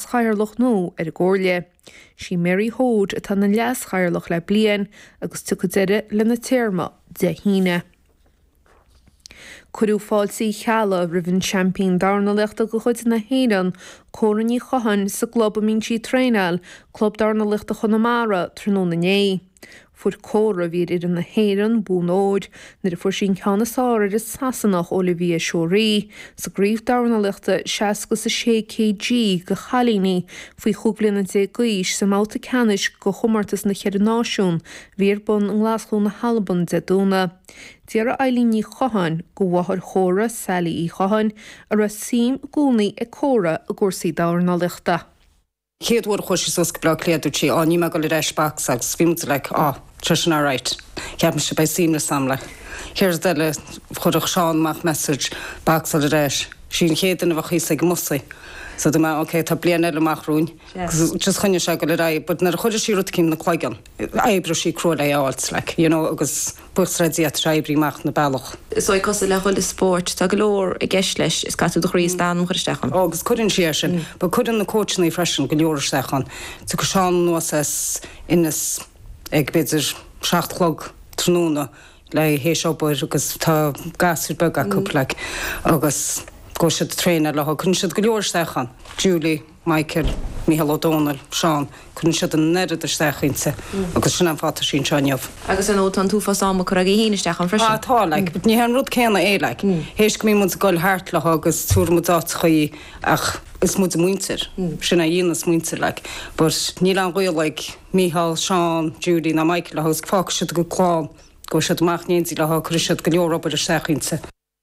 Chathaoirleach nua ar an gComhairle. Sí Mary Hoade atá ina Leas-Chathaoirleach le bliain agus tiocfaidh deireadh lena téarma Dé hAoine. Cuireadh fáilte Uí Cheallaigh roimh an seaimpín dornálaíochta de chuid na hÉireann, Córa Ní Chatháin, sa gclub a mbíonn sí ag traenáil, Club Dornálaíochta Chonamara, tráthnóna inné. Fuair Córa a bhí ar fhoireann na hÉireann, bonn óir, nuair a fuair sí an ceann is fearr ar an Sasanach Olivia Shorey sa gcraobh dornálaíochta 60 is 6 kg do chailíní faoi chúig bhliana déag d'aois sa mbabhta ceannais de Chomórtas na Cheithre Náisiún a bhí ar bun i nGlaschú na hAlban Dé Domhnaigh. D'fhiafraigh Eileen Ní Chatháin de mháthair Chóra, Sally Uí Chatháin, an raibh suim i gcónaí ag Córa i gcúrsaí dornálaíochta. chéad uair a chuaigh sí suas go Bleá Cliath dúirt sí, á níl mé ag dul ar ais back agus bhí muid like á tá sin alright cheap mise beidh suaimhneas ann like chéad rud eile chuirfeadh Seán amach message back sort of that sí an chéad duine a bheadh thíos ag an mbus í so tá mé á ok tá bliain eile amach romhainn yeah just choinnigh sé ag dul ar aghaidh but nuair a chuireadh sí rud eicínt ina cloigeann D'oibrigh sí crua lena fháil, like, you know, agus buíochas le Dia tá sé ag oibriú amach ina bealach. Is dóigh cosúil le chuile spórt. Tá go leor i gceist leis. Is caithfidh tú do chroí is d'anam a chur isteach ann. Agus cuireann sí é sin. But cuireann na cóitseannaí freisin go leor isteach ann. Tiocfaidh Seán anuas as Ennis ag b'fhéidir seacht a chlog tráthnóna théis obair agus tá gasúir beag acu, like, agus gabhann siad ag traenáil léi. Cuireann siad go leor isteach ann. Julie. Michael, Micheál Ó Domhnaill, Seán, cuireann siad an oiread isteach inti agus sin an fáth atá sí anseo inniu. Agus an bhfuil an t-uafás ama curtha agaibh féin isteach ann freisin? Ah, tá, like, but ní hé an rud céanna é, like, théis go mbíonn muid ag goil thart léi agus tabharann muid áiteacha í ach is muid a muintir, sin a dhéanas muintir, like, but níl aon ghaol ag Micheál, Seán, Julie ná Michael léi is fágfaidh siad a gcuid clann, gabhann siad amach in éindí léi, cuireann siad go leor obair isteach inti.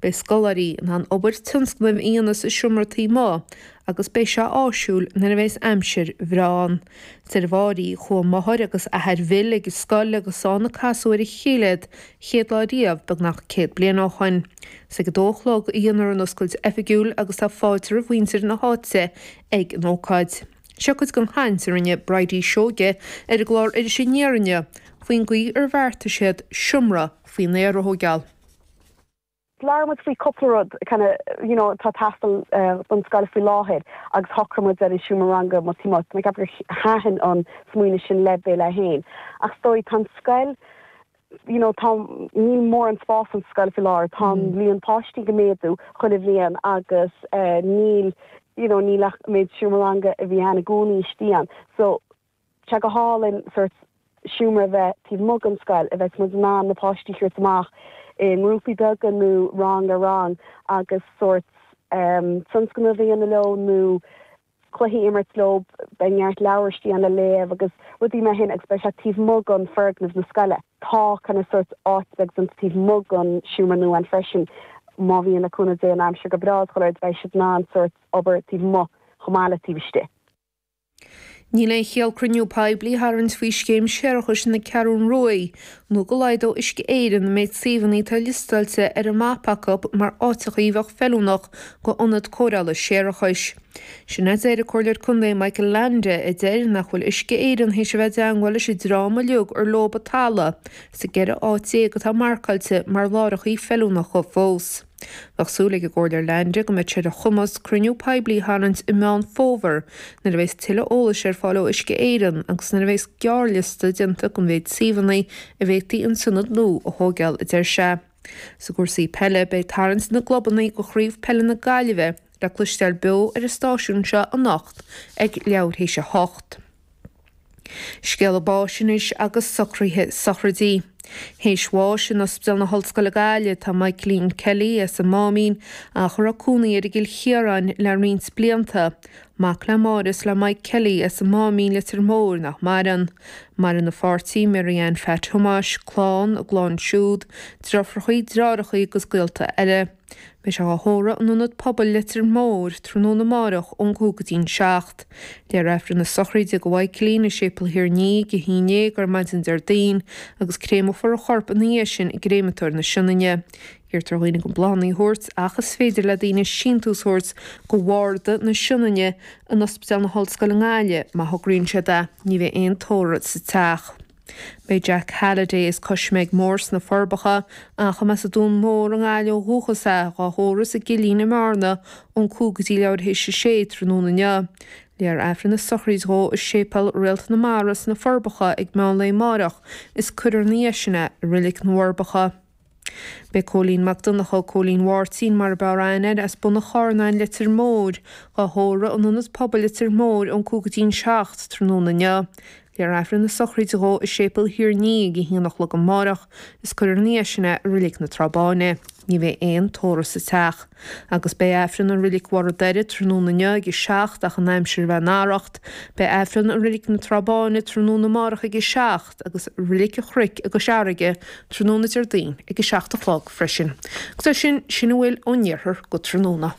Beidh scoláirí in ann obair tionscnaimh a dhéanamh sa seomra taobh amuigh agus beidh sé áisiúil nuair a bheas aimsir bhreá ann. A deir Bridie, Chuaigh máthair agus athair Bhill ag an scoil agus is ann a casadh ar a chéile iad an chéad lá riamh, beagnach céad bliain ó shoin. Is ag a dó a chlog a dhéanfar an oscailt oifigiúil agus tá fáilte roimh mhuintir na háite ag an ócáid. Seo cuid den chaint a rinne Bridie Seoige ar an gclár Iris Aniar inniu faoin gcaoi ar bheartaigh siad seomra faoin aer a thógáil. labhair muid faoi cúpla rud you know atá ag teastáil ón scoil faoi láthair agus shocraigh muid ar an seomra ranga amuigh taobh amuigh ceapaim gur thaitin an smaoineamh sin le Bill é féin ach is dóigh tá an scoil you know tá níl mórán spás sa scoil faoi láthair tá an líon páistí ag méadú chuile bhliain agus níl you know níl ach an méid seomra ranga a bhí ann i gcónaí istigh ann so Sea, go hálainn, sórt seomra a bheith taobh amuigh den scoil, a bheadh muid in ann na páistí a thabhairt amach i ngrúpaí beaga nó rang ar rang agus sórt tionscnamh a dhéanamh leo nó cluichí a imirt leo, beidh neart leabhar istigh ann le léamh agus rudaí mar shin agus beidh sé taobh amuigh den foirgneamh na scoile. Tá you know sórt áit beag déanta taobh amuigh den seomra nua ann freisin, má bhíonn, le cúnamh Dé, an aimsir go breá, you know, beidh siad in ann sórt obair taobh amuigh chomh maith le taobh istigh. Níl aon chiall cruinniú poiblí a tharraingt faoi scéim séarachais na Ceathrún Ruaidh, nó go laghdódh Uisce Éireann an méid suíomhanna atá liostáilte ar an mapa acu mar áiteacha a bheadh feiliúnach go ionad cóireála séarachais. Sin a deir an Comhairleoir Contae Michael Leainde, a deir nach bhfuil Uisce Éireann théis a bheith i dteangmháil leis an dream uilig ar leob an talamh sa gceithre áit déag atá marcáilte mar láithreachaí feiliúnacha fós. Bheadh súil ag an gComhairleoir Leainde go mbeidh sé ar a chumas cruinniú poiblí a tharraingt i Meán Fómhair nuair a bheas tuilleadh eolais ar fáil ó Uisce Éireann agus nuair a bheas gearrliosta déanta den mhéid suíomhanna a bhféadfaí an t-ionad nua a thóigeáil, a deir sé. Sa gcúrsaí peile, beidh tarraingt na gclubanna go Chraobh Peile na Gaillimhe le cloisteáil beo ar an stáisiún seo anocht ag leathuair théis a hocht. Scéala báis anois agus socraithe sochraidí. Théis bháis in Ospidéal na hOllscoile Gaillimh atá Maidhcilín Kelly, as an Máimín, ach a raibh cónaí air i gCill Chiaráin le roinnt blianta. Mac le Máire is le Mike Kelly, as an Máimín, Leitir Móir, nach maireann. Maireann a pháirtí, Mary Anne Phat Thomáis, clann, a gclann siúd, deirfiúrachaí, dreárachaí agus gaolta eile. Beidh sé á thórramh in Ionad Pobail Leitir Móir tráthnóna amárach ón gcúig go dtí'n seacht. Léifear Aifreann na sochraide do Mhaidhcilín i Séipeal Thír an Fhia ag a haon déag ar maidin Déardaoin agus créameofar a chorp ina dhiaidh sin i gcréamatóir na Sionainne. Iarrtar ar dhaoine gan bláthanna a thabhairt ach is féidir le daoine síntiús a thabhairt go Bharda na Sionainne in Ospidéal na hOllscoile i nGaillimh má thograíonn siad é. Ní bheidh aon tórramh sa teach. Beidh Jack Halliday as Coisméig Mór sna Forbacha, ach a mba as an Dún Mór i nGaillimh ó dhúchas é, dhá thórramh sa gCillín i mBearna ón cúig go dtí leathuair théis a sé tráthnóna inniu. Léifear Aifreann na sochraide dhó i Séipéal Réalt na Mara sna Forbacha ag meán lae amáireach, is cuirfear 'na dhiaidh sin é i Roilig na bhForbacha. Beidh Cóilín Mac Donnchadha, Cóilín Mháirtín mar a b'fhearr aithne air, as Bun an Chárnáin, Leitir Móir, dhá thórramh in Ionad Pobail Leitir Móir ón cúig go dtí'n seacht tráthnóna inniu. Léifear Aifreann na sochraide dhó i Séipeal Thír an Fhia ag a haon a chlog amáireach is cuirfear 'na dhiaidh sin é i Roilig na Trá Báine. Ní bheidh aon tórramh sa teach. Agus beidh Aifreann i Roilig Bharr an Doire tráthnóna inniu ag a seacht ach an aimsir a bheith in araíocht beidh Aifreann i Roilig na Trá Báine tráthnóna amáireach ag a agus Reilig an Chnoic i gCois Fharraige tráthnóna Déardaoin ag a seacht a chlog freisin. Agus sin sin a bhfuil ón iarthar go tráthnóna.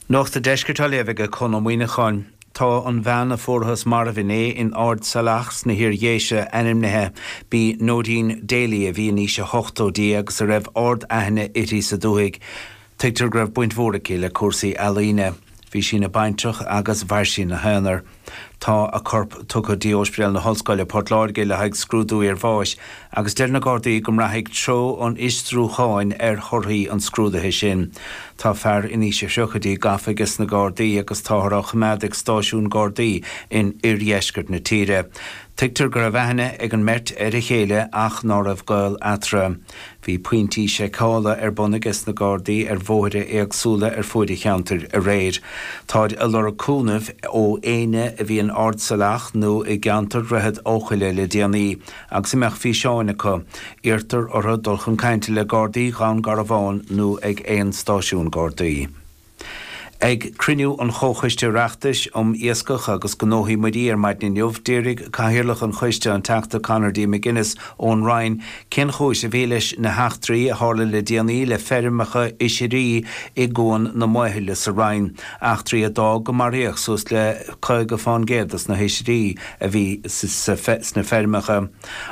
Nuacht Deiscirt á léamh ag Conn Ó Muíneacháin. Tá an bhean a fuarthas marbh inné in Ard Salach sna hIar-Dhéise ainmnithe b'í Noeleen Daly a bhí in aois a hochtóidí agus a raibh ard aithne uirthi sa dúthaigh. Tuigtear go raibh baint mhór aici le cúrsaí ealaíne. Bhí sí ina baintreach agus mhair sí ina haonar. Tá a corp tugtha d'Ospidéal na hOllscoile, Port Láirge le haghaidh scrúdú iarbháis agus deir na Gardaí go mbraithfidh treo an fhiosrúcháin ar thorthaí an scrúdaithe sin. Tá fear in aois a thríochaidí gafa aige sna Gardaí agus táthar á choimeád ag stáisiún Gardaí in oirdheisceart na tíre. Tuigtear go raibh aithne ag an mbeirt ar a chéile ach ná raibh gaol eatarthu. Bhí pointí seiceála ar bun aige sna Gardaí ar bhóithre éagsúla ar fuaid an cheantair aréir. Táid ag lorg cúnaimh ó éinne a bhí in Ard Salach nó i gceantar Dhroichead Eochaille le déanaí agus a mbeadh físeáin acu. Iarrtar orthu dul chun cainte le Gardaí Dhún Garbhán nó ag aon stáisiún Gardaí. Ag cruinniú an Chomhchoiste Oireachtais um Iascach agus Gnóthaí Muirí ar maidin inniu, d'fhiafraigh Cathaoirleach an Choiste, an Teachta Conor D. McGuinness ón Rinn, cén chúis a bhí leis na heachtraí a tharla le déanaí le feirmeacha oisirí i gCuan na Maothaile sa Rinn, eachtraí a d'fhág go maraíodh suas le caoga fán gcéad de na hoisirí a bhí sna feirmeacha.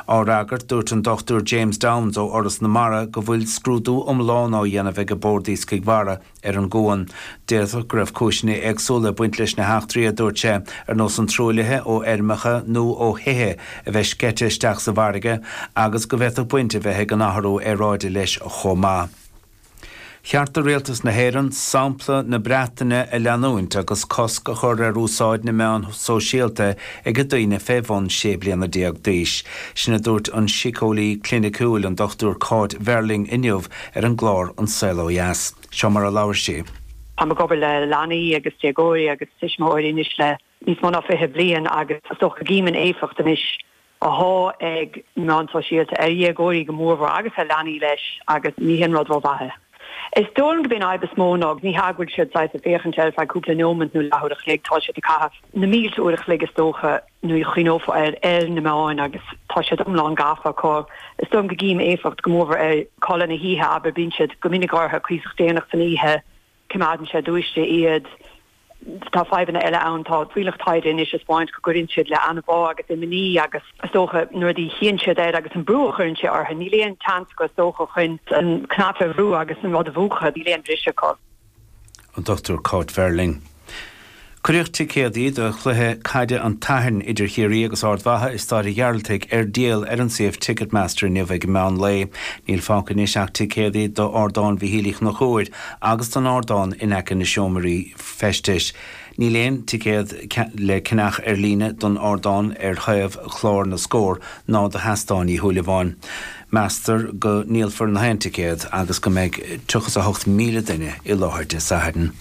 Á fhreagairt, dúirt an Dr James Downes ó Fhoras na Mara go bhfuil scrúdú iomlán á dhéanamh ag an Bord Iascaigh Mhara ar an gcuan. D'fhéadfadh go raibh cúiseanna éagsúla ag baint leis na heachtraí, a dúirt sé, ar nós an truaillithe ó fheirmeacha nó ó thithe a bheith sceite isteach sa bhfarraige agus go bhféadfadh baint a bheith ag an athrú aeráide leis chomh maith. Cheart do Rialtas na hÉireann sampla na Breataine a leanúint agus cosc a chur ar úsáid na meán sóisialta ag daoine fé bhun sé bliana déag d'aois. Sin a dúirt an síceolaí cliniciúil, an Dr Cáit Verling inniu ar an gclár An Saol Ó Dheas. Seo mar a labhair sí. Táim ag obair le leanaí agus déagóirí agus tuismitheoirí anois le. níos mó ná fiche bliain agus is dócha go gcím an éifeacht anois athá ag na meáin shóisialta ar dhéagóirí go mórmhór agus ar leanaí leis agus ní haon rud ró-mhaith é. Is dóigh liom go mbíonn an fhadhb is mó ná ní hamháin go bhfuil siad saghas ag féachaint ar feadh cúpla neomat nó leathuair a chloig, tá siad ag caitheamh na mílte uair a chloig is dócha nuair a chuimhneofá air ar na meáin agus tá siad iomlán gafa acu. Is dóigh liom go gcím éifeacht go mórmhór ar chodladh na hoíche abair bíonn siad go minic ortha cuíosach déanach san oíche, coimeádann sé dúisithe iad. Tá fadhbanna eile ann. Tá fuílleach taighde anois a spáint go gcuireann siad le anbhá agus imní agus, is dócha, na rudaí a chíonn siad air agus an brú a chuireann sé orthu. Níl aon tseans acu, is dócha, chun an cnaipe a bhrú agus an rud a mhúchadh. Níl aon bhriseadh acu. An Dr Cáit Verling. Cuireadh ticéadaí do chluiche caide an tSathairn idir Chiarraí agus Ard Mhacha i Stáid a' Ghearaltaigh ar díol ar an suíomh Ticketmaster inniu ag meán lae. Níl fágtha anois ach ticéadaí d'ardán Mhíchíl Uí Chonchúir agus don ardán in aice na seomraí feistis. Níl aon ticéad le ceannach ar líne don ardán ar thaobh chlár na scór ná do sheastán Uí Shúilleabháin. Meastar go ndíolfar nach aon ticéad agus go mbeidh 38,000 duine i láthair Dé Sathairn.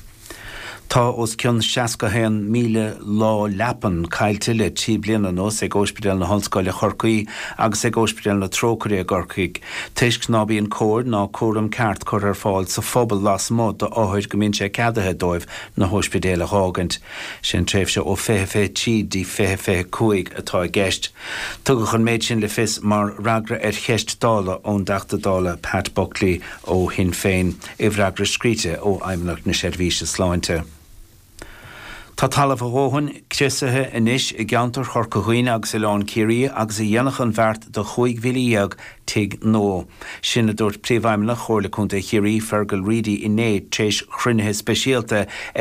Tá os cionn 61,000 lá leapan caillte le trí bliana anuas ag Óispidéal na hOllscoile Chorcaí agus ag Óispidéal na Trócaire i gCorcaigh toisc ná bíonn cóir ná cúram ceart curtha ar fáil sa phobal lasmuigh d'othair go mbíonn sé ceadaithe dóibh na hóispidéil a dh'fhágaint. Sin tréimhse ó fiche fiche trí dtí fiche fiche cúig atá i gceist. Tugadh an méid sin le fios mar fhreagra ar cheist Dála ón dTeachta Dála Pat Buckley ó Shinn Féin. I bhfreagra scríte ó Fheidhmeannacht na Seirbhíse Sláinte, Tá talamh a dhóthain criosaithe anois i gceantar Chorca Dhuibhne agus Oileán Ciarraí agus a dhéanfadh an bheart do 15,000 tigh nua. Sin a dúirt Príomhfheidhmeannach Chomhairle Contae Chiarraí, Fearghal Reidy inné tréis chruinnithe speisialta ag